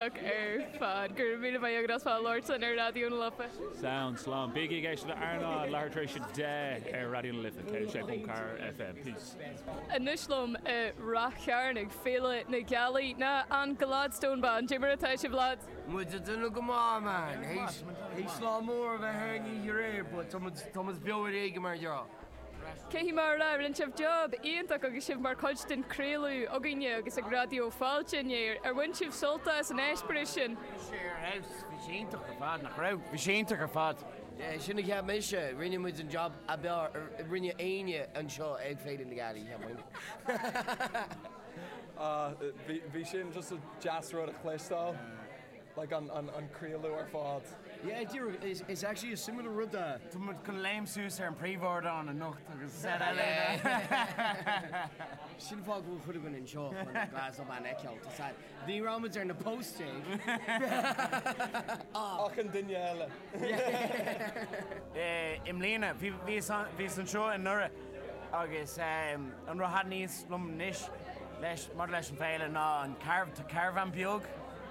ar fad. Go raibh míle maith agat as ucht labhairt linn ar Raidió na Life. Sounds slán. Bígí ag éisteacht le RnaL Láithreach tar éis a deich ar Raidió na Life 106.4 FM. Peace. Anois liom i Rath Chairn ag Féile na Gealaí ná an Gladstone Band. Dé mar atá sibh lads? Muid ag déanamh go maith man. Théis lá mór a bheith ar an oíche aréir but tá muid beo ar éigin mar gheall. Cén chaoi mar a raibh? Rinne sibh job iontach agus sibh mar chuid den craoladh againne agus ag Raidió Fáilte inné. Ar bhain sibh sult as an eispéireas sin? Bhí sé ar fheabhas. Bhí sé iontach ar fad, nach raibh? Bhí sé iontach ar fad. Yeah, sin a cheap mise. Rinne muid an job ab fhearr a rinne éinne anseo ag Féile na Gealaí, cheapfainn. Ah, bhí sin just deas rud a chloisteáil. like an craoladh ar fad. Yeah, díreach, it's actually a similar rud a. Tá muid chun léim suas ar an príomhardán anocht agus yeah. Sin fáth go bhfuil cuid againn anseo chun an Gladstone Band a fheiceáil, tá sé. Ní raibh muid ar na posters. Ah. Ach an duine eile. I mbliana, bhíos anseo anuraidh agus an rud a thaitníos liom anois maidir leis an bhféile ná an caravan beag.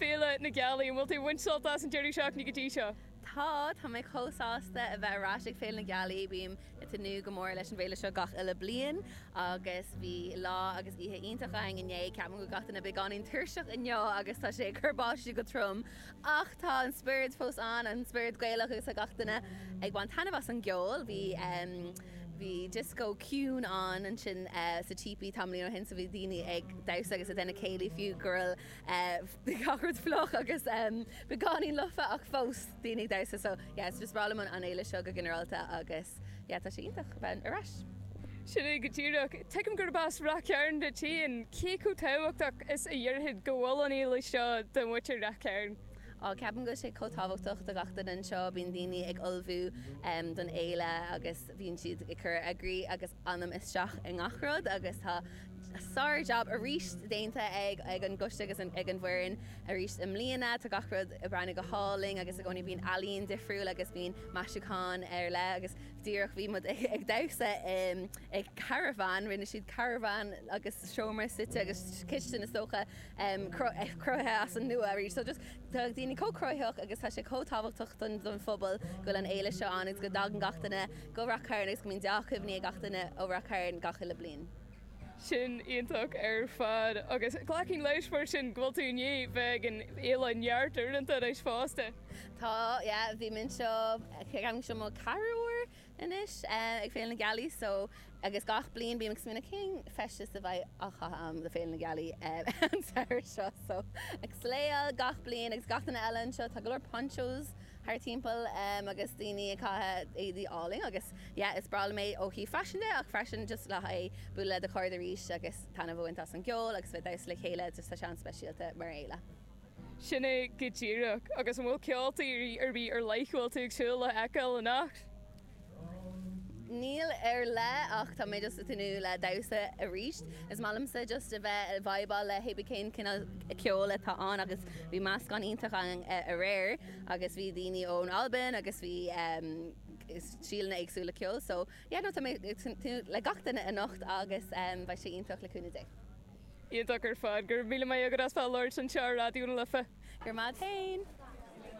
Féile na Gealaí, an bhfuil tú ag baint sult as an deireadh seachtaine go dtí seo? Tá, tá mé chomh sásta a bheith ar ais ag Féile na Gealaí. Bím ag tnúth go mór leis an bhféile seo gach uile bliain agus bhí lá agus oíche iontach againn inné. Ceapaim go bhfuil gach duine beagáinín tuirseach inniu agus tá sé ag cur báistí go trom ach tá an spiorad fós ann, an spiorad Gaelach agus tá gach duine ag baint taitneamh as an gceol. Bhí, bhí dioscó ciúin ann ansin sa típí tamallín ó shin so bhí daoine ag damhsa agus ag déanamh céilí fiú. bhí gach rud fliuch agus beagáinín lofa ach fós daoine ag damhsa so yeah is breá liom an fhéile seo go ginearálta agus yeah tá sé iontach a bheith ar ais. Sin é go díreach. Tuigim gurb as Rath Chairn duit féin, cé chomh tábhachtach is a déarfá go bhfuil an fhéile seo do mhuintir Rath Chairn? Á, ceapaim go bhfuil sé chomh tábhachtach do gach duine anseo, bíonn daoine ag ullmhú don fhéile agus bíonn siad ag cur a gcroí agus anam isteach i ngach rud agus tá Sár-jab arís déanta ag an gcoiste agus ag an bhfoireann arís i mbliana. Tá gach rud ag breathnú go hálainn agus i gcónaí bíonn ealaín difriúil agus bíonn maisiúcháin ar leith agus díreach bhí muid ag damhsa i caravan, rinne siad caravan agus seomra suite agus cistin is dócha, cruthaithe as an nua arís. Tá daoine chomh cruthaitheach agus tá sé chomh tábhachtach don phobal go bhfuil an fhéile seo ann agus go dtagann gach duine go Rath Cairn agus go mbíonn deá-chuimhní ag gach duine ó Rath Cairn gach uile bliain. Sin iontach ar fad, agus glacaim leis mar sin go bhfuil tú i ndiaidh bheith ag an oileán neart uaireanta anois fosta. Tá, yeah, bhí mé anseo, ceapaim go seo mo ceathrú uair anois ag Féile na Gealaí, so, agus gach bliain bím ag smaoineamh cén feisteas a bheidh á chaitheamh agam do Féile na Gealaí an samhradh seo, so, ag svae gach bliain agus gach duine eile anseo, tá go leor ponchos. thar timpeall agus daoine ag caitheamh éadaí álainn agus yeah is breá liom é ó thaobh faisean de ach freisin just le haghaidh bualadh le do chairde arís agus taitneamh a bhaint as an gceol agus a bheith damhsa le chéile just tá sé an-speisialta mar fhéile. Sin é go díreach. Agus an bhfuil ceoltóirí ar bith ar leith go bhfuil tú ag súil le feiceáil anocht? Níl ar leith ach tá mé just ag tnúth le damhsa arís. Is maith liomsa just a bheith ag vibáil le hé bí cén cineál ceoil atá ann agus bhí meascán iontach ann aréir agus bhí daoine ón Albain agus bhí stíleanna éagsúla ceoil so yeah no tá mé ag tnúth le gach duine anocht agus beidh sé iontach le cúnamh Dé. Iontach ar fad. Go raibh míle maith agat as bheith labhairt anseo ar Raidió na Life. Go raibh maith agat féin.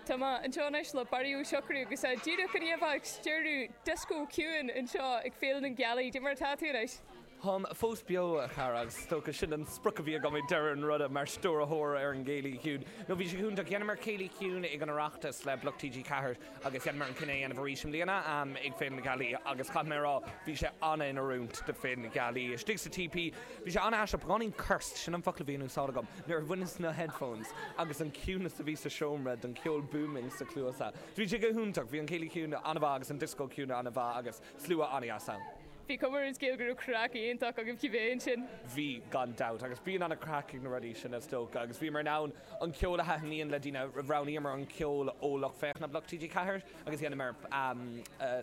Tá mé anseo anois le Barry Ó Siochrú agus é díreach i ndiaidh a bheith ag stiúradh dioscó ciúin anseo ag Féile na Gealaí. Cad é mar atá tú anois? Táim fós beo, a chara, agus is dócha sin an sprioc a bhí agam ag deireadh an ruda, mar stiúrthóir ar an gCéilí Ciúin. No bhí sé iontach. Dheineamar Céilí Ciúin ag an Oireachtas le Bloc TG4. agus dheineamar an cinneadh é a dhéanamh arís i mbliana ag Féile na Gealaí agus caithfidh mé a rá bhí sé ana in oiriúint do Féile na Gealaí istigh sa teepee bhí sé ana aisteach beagáinín cursed, sin an focal a bhí in úsáid agam, nuair a bhainis na headphones agus an ciúnas a bhí sa seomra ón gceol booming sa cluasa. Bhí sé go hiontach, bhí an céilí ciúin ana mhaith agus an disco ciúin ana mhaith agus slua ana dheas ann. Bhí cuma ar an scéal go raibh craic iontach agaibh cibé ansin. Bhí, gan dabht, agus bíonn ana craic ag na rudaí sin is dócha agus bhíomar in ann, an ceol a thaitníonn le daoine. Roghnaíomar an ceol ó lucht féachana Bloc TG4 agus dheineamar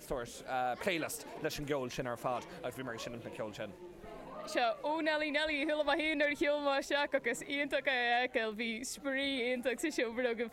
sórt playlist leis an gceol sin ar fad agus bhíomar ag seinimt an cheoil sin. Sea, Ó Neilí Neilí, chuala mé féin nuair a shiúil mé isteach agus iontach é a fheiceáil, bhí spraoi iontach sa seomra agaibh.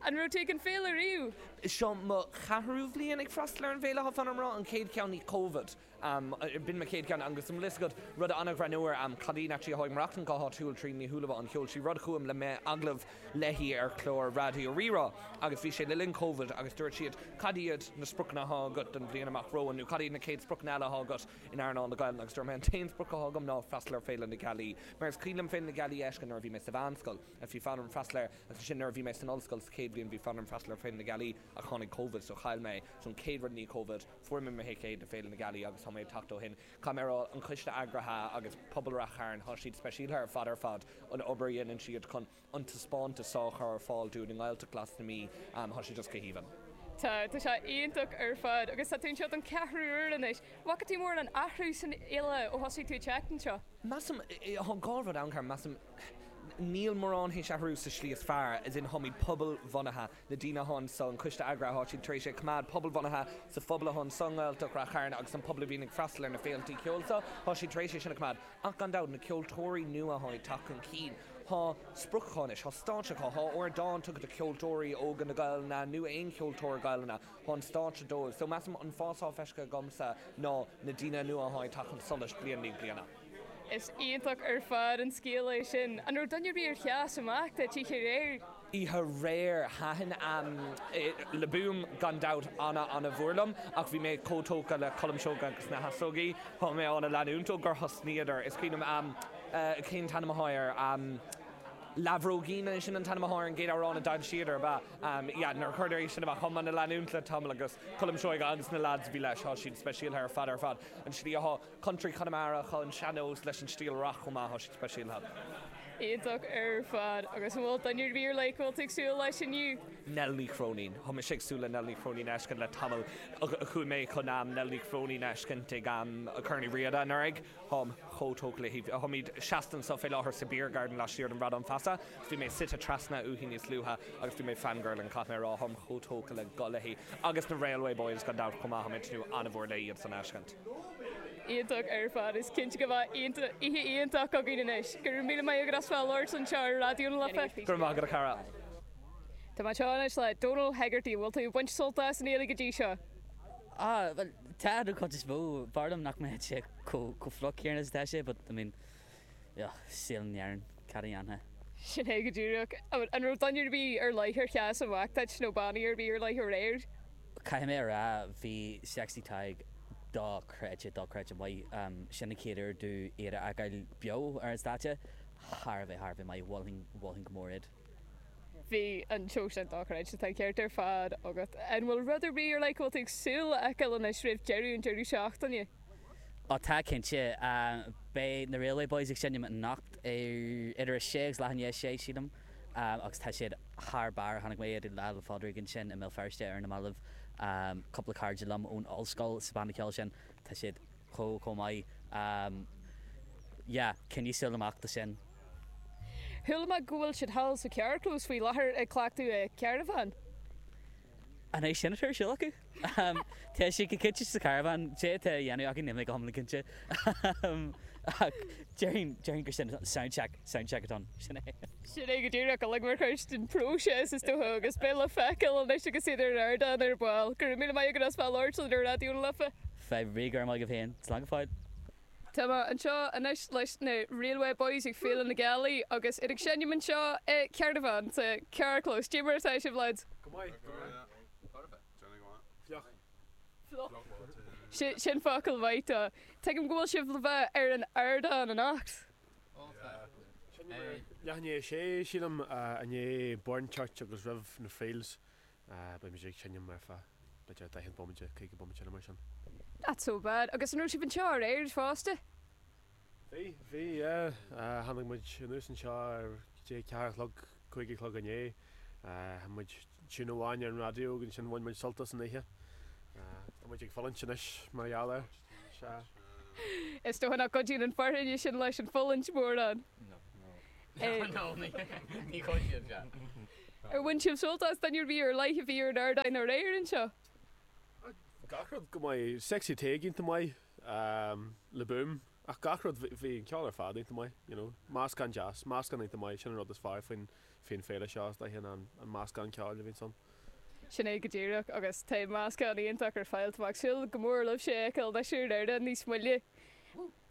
An raibh tú ag an féile riamh? Seo mo cheathrú bhliain ag freastal ar an bhféile, fan go mbraithim, an chéad cheann i ndiaidh Covid. B'in mo chéad cheann. An bhfuil fhios agat rud an-ghreannmhar? Cailín a chónaíonn, a mhaireann go háitiúil Tríona Ní Shúilleabháin, sheol sí rud chugam le déanaí, agallamh léi ar chlár Raidió Rí-Rá agus bhí sé le linn Covid agus dúirt siad cad iad na spriocanna athá agat don bhliain amach romhainn nó cad iad na chéad spriocanna eile athá agat in earnáil na Gaeilge agus dúirt mé an t-aon sprioc athá agam ná freastal ar Féile na Gealaí mar is cuimhin liom Féile na Gealaí a fheiscint nuair a bhí mé sa mheánscoil agus bhí fonn orm freastal air agus ansin nuair a bhí mé san ollscoil sa chéad bhliain bhí fonn orm freastal ar Féile na Gealaí ach tháinig Covid so chaill mé so an chéad rud i ndiaidh Covid Fuair mé mo thicéad do Féile na Gealaí agus tá mé ag teacht ó shin. Caithfidh mé a rá an coiste eagraithe agus pobal Ráth Chairn, tá siad speisialta ar fad ar fad an obair a dhéanann siad chun an taispeántas so a chur ar fáil dúinn i nGaeltacht Ghlas na Mí, tá siad just go haoibheann. Tá, tá sé iontach ar fad agus tá tú anseo don ceathrú uair anois. Bhfaca tú mórán athrú san fhéile ó thosaigh tú ag teacht anseo? Measaim, tá dhá rud ann, a chara, measaim, níl mórán tar éis athrú sa slí is fearr as in táimid pobalbhunaithe, na daoine atá anso an Coiste Eagraithe Áitiúil tar éis é a choimeád pobalbhunaithe sa phobal atá anso i nGaeltacht Ráth Chairn agus an pobal a bhíonn ag freastal ar na féiltí ceoil so Tá siad tar éis é sin a choimeád ach gan dabht na ceoltóirí nua atá ag teacht chun cinn. Tá sprioc acu anois. Tá stáitse acu. Tá ardán tugtha do cheoltóirí óga na Gaelainne nó aon cheoltóir Gaelainne tá an stáitse dóibh. So measaim an fás atá feiscthe agamsa ná na daoine nua atá ag teacht chun solais bliain i ndiaidh bliana. Is iontach ar fad an scéal é sin. An raibh duine ar bith a sheas amach duit oíche aréir? Oíche aréir, thaitin Le Boom gan dabht an-an-mhór liom, ach bhí mé chomh tógtha le Colm Seoighe agus na hEasógaí, tá mé á leanúint ó gur thosnaíodar. Is cuimhin liom cén t-ainm atá air? Leathbhróigín, an é sin an t-ainm atá ar an gcéad amhrán a d'fhoilsíodar, ab ea? Yeah, nuair a chuireadar é sin amach, tá mé á leanúint le tamall, agus Colm Seoighe agus na leaids a bhí leis, tá siad speisialtha ar fad ar fad. An slí atá. Country Chonamara tá an sean-nós leis an stíl rac chomh maith, tá sé speisialta. iontach ar fad agus an bhfuil duine ar bith ar leith a bhfuil tú ag súil leis inniu? Nell Ní Chróinín. Tá mise ag súil le Nell Ní Chróinín a fheiscint le tamall. Chuaigh mé chun am Nell Ní Chróinín a fheiscint ag am Corn Uí Riada anuraidh. Táim chomh tógtha léi. Táimid seasta anseo fé láthair sa Beer Garden laistiar den Bhradán Feasa agus bhí mé suite trasna uaithi níos luaithe agus bhí mé fangirling caithfidh mé a rá. Táim chomh tógtha le go léi. Agus na Railway Boys gan dabht chomh maith. Táim ag tnúth an-mhór le hiadsan a fheiscint. Iontach ar fad. Is cinnte go mbeidh oíche iontach againn anois. Go raibh míle maith agat as ucht labhairt anseo ar Raidió na Life. Go raibh maith agat a chara. Tá mé anseo anois le Donal Hegarty. An bhfuil tú ag baint sult as an fhéile go dtí seo? Ah, bhuel, tá, don chuid is mó. B'fhearr liom nach mbeadh sé chomh fliuch céanna is atá sé, but, I mean, Ugh, saol in Éirinn, cad a dhéanfá? Sin é go díreach an raibh duine ar bith ar leith ar sheas amach duit, nó bannaí ar bith ar leith aréir. Caithfidh mé a rá, bhí Sexy Tadhg dochreidte, dochreidte maith. Sin an chéad uair domh iad a fheiceáil beo ar an stáitse. Thar a bheith, thar a bheith maith. Mholfainn, mholfainn go mór iad. Bhí an seó sin dochreidte, tá an ceart ar fad agat. An bhfuil rud ar bith ar leith go bhfuil tú ag súil a fheiceáil anois roimh deireadh an deireadh seachtaine? Ó tá, cinnte. Beidh na Railway Boys ag seinm anocht idir a sé agus leath i ndiaidh a sé, sílim, agus tá siad thar barr. Chonaic mé iad ag Lá 'le Pádraig ansin i mBéal Feirste ar na mallaibh, cúpla cairde liom ón ollscoil sa bhanna ceoil sin. Tá siad. chomh maith. Yeah, coinnigí súil amach dó sin. Chuala mé go bhfuil siad thall sa carrchlós faoi láthair ag cleachtadh i caravan. An é sin atá ar siúl acu? Tá siad go cinnte sa caravan. Cad é atá á dhéanamh acu níl mé go hiomlán cinnte. Ach déarfainn, déarfainn gur sin, soundcheck, soundcheck atá ann. Sin é. Sin é go díreach. Uilig mar chuid den phróiseas is dócha agus beidh le feiceáil anois agus iad ar an ardán ar ball. Go raibh míle maith agat as bheith ag labhairt linn ar Raidió na Life. Fadhb ar bith, go raibh maith agat féin, slán go fóill. Tá mé anseo anois leis na Railway Boys ag Féile na Gealaí agus iad ag seinm anseo i caravan, sa carrchlós. Cad é mar atá sibh, lads? Go maith, go maith. Déanamh go maith. Fliuch. Fliuch. Sin focal maith dó. Tuigim go bhfuil sibh le bheith ar an ardán anocht? Oh, tá. Seinm ar leath i ndiaidh a sé, sílim, i ndiaidh Burnchurch agus roimh na Friels. Ah, beidh muid ag seinm ar feadh b'fhéidir 40 bomaite, 50 bomaite nó mar sin. Not so bad. Agus an raibh sibh anseo aréir fosta? Bhí, bhí, yeah. Tháinig muid anuas anseo ar dtí a ceathair a chlog, cúig a chlog inné. Chaith muid tune amháin ar an raidió agus ansin bhain muid sult as an oíche. Tá muid ag fulaingt anois mar gheall air. Sea. Is dócha nach gcuidíonn an fhearthainn sin leis an fulaingt mórán. No, no. Ar bhain sibh sult as duine ar bith ar leith a bhí ar an ardán aréir anseo? Gach rud go maith. Sexy Tadhg iontach maith Le Boom ach gach rud, bhí an ceol ar fad iontach maith, you know. Meascán deas, meascán iontach maith, sin an rud is fearr faoin féile seo is dócha ná an meascán ceoil a bhíonns ann. Sin é go díreach agus tá meascán iontach ar fáil. Tá mé ag súil go mór libhse a fheiceáil thuas ar an ardán níos moille.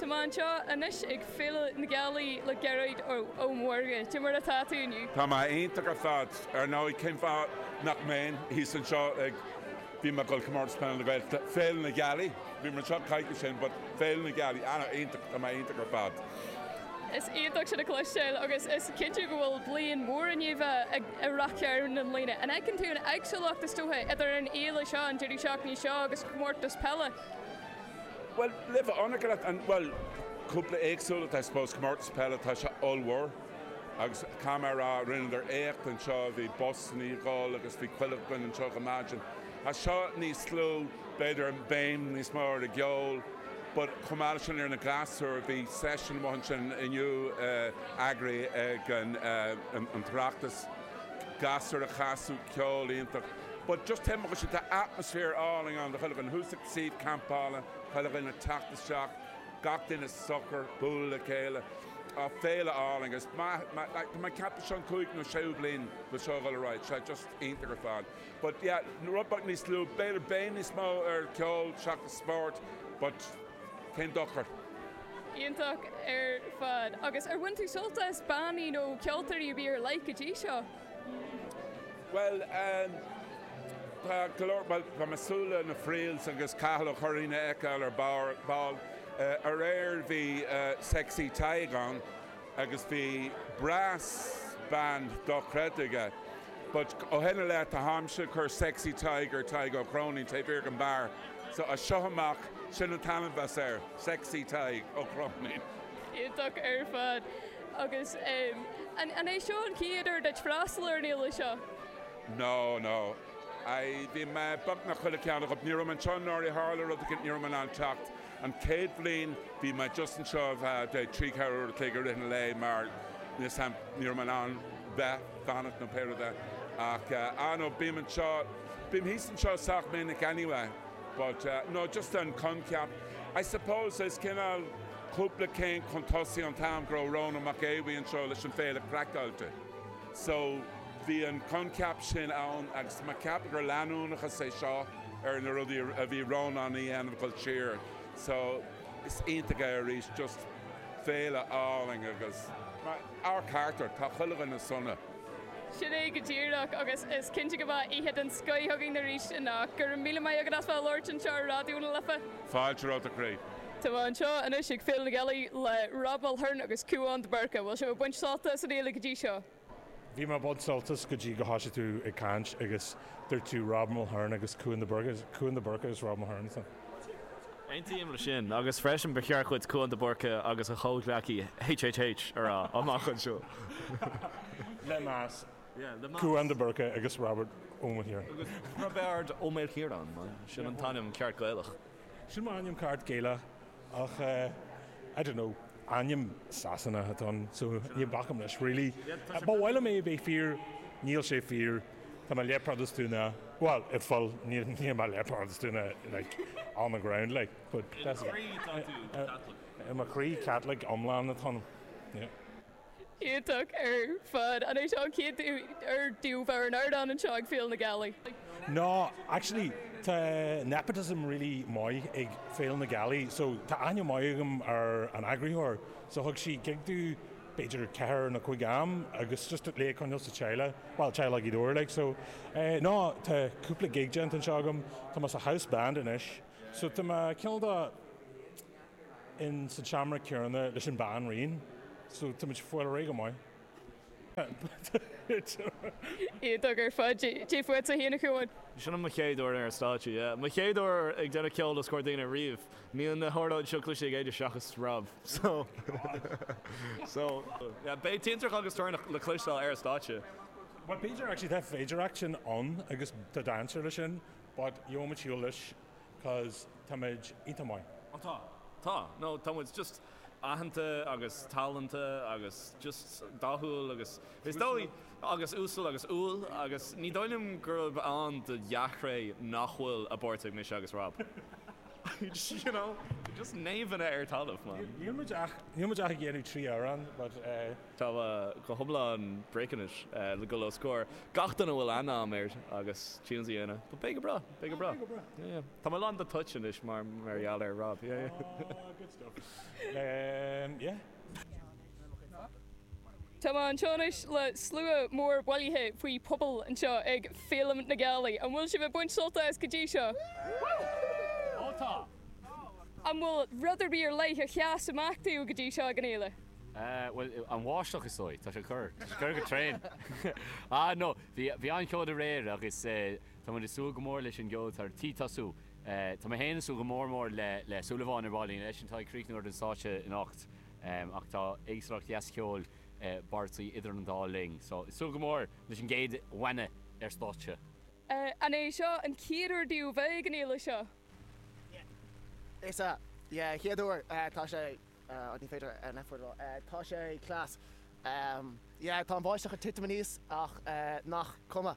Tá mé anseo anois ag Féile na Gealaí le Gearóid Ó Mórdha. Cé mar atá tú inniu? Tá mé iontach ar fad. Ar ndóigh, cén fáth nach mbeinn thíos anseo ag, bhí mé ag dul Comórtas Peile na Gaeltachta, Féile na Gealaí. Bhí mé anseo coicís ó shin but Féile na Gealaí ana iontach, tá mé iontach ar fad. Is iontach sin a chloisteáil agus is cinnte go bhfuil bliain mhór anseo i Ráth Chairn i mbliana. An fheiceann tú an éagsúlacht is dócha idir an fhéile seo, an deireadh seachtaine seo agus comórtas peile? Bhuel, le bheith ionraic leat, an, bhuel, cúpla éagsúlacht I suppose, comórtas peile tá sé ollmhór agus caithfidh mé a rá rinneadar éacht anseo, bhí busanna ag dul agus bhí chuile dhuine anseo go maidin. Tá seo níos lú. b'fhéidir béim níos mó ar an gceol but chomh maith leis sin ar na gasúir bhí session amuigh ansin inniu eagraithe ag an tOireachtas gasúir a' casadh ceol iontach but just taobh amuigh ansin tá atmaisféar álainn ann do chuile dhuine thuas ag suíomh campála chuile dhuine ag teacht isteach gach duine socair bualadh le chéile ah féile álainn agus tá mé ag ceapadh seo an cúigiú nó séú bliain le seo a dhul ar aghaidh 's é just iontach ar fad. but yeah rud beag níos lú, b'fhéidir béim níos mó ar ceol seachas spórt but cén dochar? Iontach ar fad. Agus ar bhain tú sult as bannaí nó ceoltóirí a bhí ar like go dtí seo? Bhuel em tá go leor, bhuel tá mé ag súil le na Friels agus Cathal Ó Curráin a fheiceáil ar ball, aréir bhí Sexy Tadhg ann. agus bhí brass band dochreidte aige but ó shin i leith tá, táimse ag cur Sexy Tadhg ar Tadhg Ó Cróinín, taobh thiar den bheár so as seo amach sin an t-ainm bheas air, Sexy Tadhg Ó Cróinín. Iontach ar fad. Agus an é seo an chéad uair duit freastal ar an fhéile seo? No, no. I, bhí mé beagnach chuile ceann acu. Ní raibh mé anseo anuraidh, tharla rud éigin, ní raibh mé in ann teacht. An chéad bhliain bhí mé just anseo le haghaidh trí, ceithre uair a chloig i rith an lae mar ní raibh mé in ann bheith, fanacht nó pé rud é. Ach ah no, bím anseo, bím thíos anseo sách minic anyway but no just an coincheap I suppose is cineál cúpla céim chun tosaigh an t-am go raibh Rónán Mac Aodh anseo leis an Féile Craiceáilte. So, bhí an coincheap sin ann agus ceapaim gur leanúnachas é seo ar na rudaí a bhí Rónán a dhéanamh ag dul siar. So, is iontach é arís, just féile álainn agus ar fheabhas ar fad, tá chuile dhuine sona. Sin é go díreach agus is cinnte go mbeidh oíche den scoith againn arís anocht. Go raibh míle maith agat as bheith ag labhairt anseo ar Raidió na Life. Fáilte romhat a chroí. Tá mé anseo anois ag Féile na Gealaí le Rob Mulhern agus Cúán de Burca. Bhfuil sibh ag baint sult as an fhéile go dtí seo? Bhí mé ag baint sult as go dtí gur thosaigh tú ag caint agus dúirt tú Rob Mulhern agus Cúán de Burca. Is Cúán de Burca is Rob Mulhern atá. Aontaím le sin, agus freisin ba cheart dhuit Cúán de Burca agus a chomhghleacaí HHH a rá amach anseo. Le meas, Cúán de Burca agus Robert Ó Mulhern. Agus Roibeárd Ó Maoilchiaráin, mar sin an t-ainm ceart Gaelach. Sin m'ainm ceart Gaelach ach I don't know. Ainm Sasanach atá ann so ní bacaim leis really. Ba mhaith liom é a bheith fíor, níl sé fíor. Tá mé leath-Phrotastúnach, bhuel an bhfuil, níl mé leath-Phrotastúnach like on the ground like but that's about it. I mo chroí Caitliceach iomlán atá ionam yeah. iontach ar fad. An é seo an chéad uair daoibh a bheith ar an ardán anseo ag Féile na Gealaí? No, actually tá nepotism really maith ag Féile na Gealaí so tá aithne maith agam ar an eagraitheoir so thug sí gig do b'fhéidir ceithre nó cúig am agus just le coinneáil sa teaghlaigh, bhuel teaghlaigh iad uilig like so eh no tá cúpla gig déanta anseo agam, tá mé sa house band anois so tá mé ceann do in sa tseomra céanna leis an Bhanríon so táimid fuil réidh go maith. iontach ar fad. Cé fuair tú Shíneach amháin? Sin mo chéad uair ar an stáitse, yeah. Mo chéad uair ag déanamh ceoil os comhair daoine riamh. Níl na hairde seo cloiste ag éinne seachas rap. So so, yeah. Beidh tintreach agus toirneach le cloisteáil ar an stáitse. Bhuel, b'fhéidir actually, tá féidearthacht sin ann agus tá dainséar leis sin but gheobhaimid shiúl leis. cos tá muid iontach maith. Ó tá. Tá. No, tá muid just aitheanta agus tallannach agus just dathúil agus is dóigh agus uasal agus umhal agus ní dóigh liom gurb ann do dhea-thréith nach bhfuil a bpáirt ag mise agus Rob. You know? Just naomhanna ar talamh, man. Níl muid ach, níl muid ach ag iarraidh trí amhrán but eh. Tá go hiomlán bricking it le dul os comhair gach duine a bhfuil aithne agam air agus tunes a dhéanamh but beidh go breá. Beidh go breá. Beidh go breá. Yeah, yeah. Tá mé lán de toit anois mar gheall ar Rob. Yeah, yeah. Ah, good stuff. Um, yeah. Tá mé anseo anois le slua mór bailithe faoi phuball anseo ag Féile na Gealaí. An bhfuil sibh ag baint sult as go dtí seo? Woo! Ó tá! An bhfuil rud ar bith ar leith a sheas amach daoibh go dtí seo ag an fhéile? Eh, bhuel, an bháisteach is dóigh. Tá sé ag cur. Tá sé ag cur go tréan. Ah, no, bhí, bhí an-cheol aréir agus eh, Tá muid ag súil go mór leis an gceol atá ar tí tosú. Tá mé féin ag súil go mór mór le le Súilleabháin ar ball, eisean atá ag críochnú ar an stáitse anocht ach tá éagsúlacht dheas cheoil i bártaí idir an dá linn so ag súil go mór leis an gcéad bhanna ar stáitse. An é seo an chéad uair daoibh a bheith ag an fhéile seo? Yeah. Is ea. Yeah, chéad uair. Tá sé, oh ní féidir an F-word a rá, tá sé class. Yeah, tá an bháisteach ag titim anuas ach nach cuma.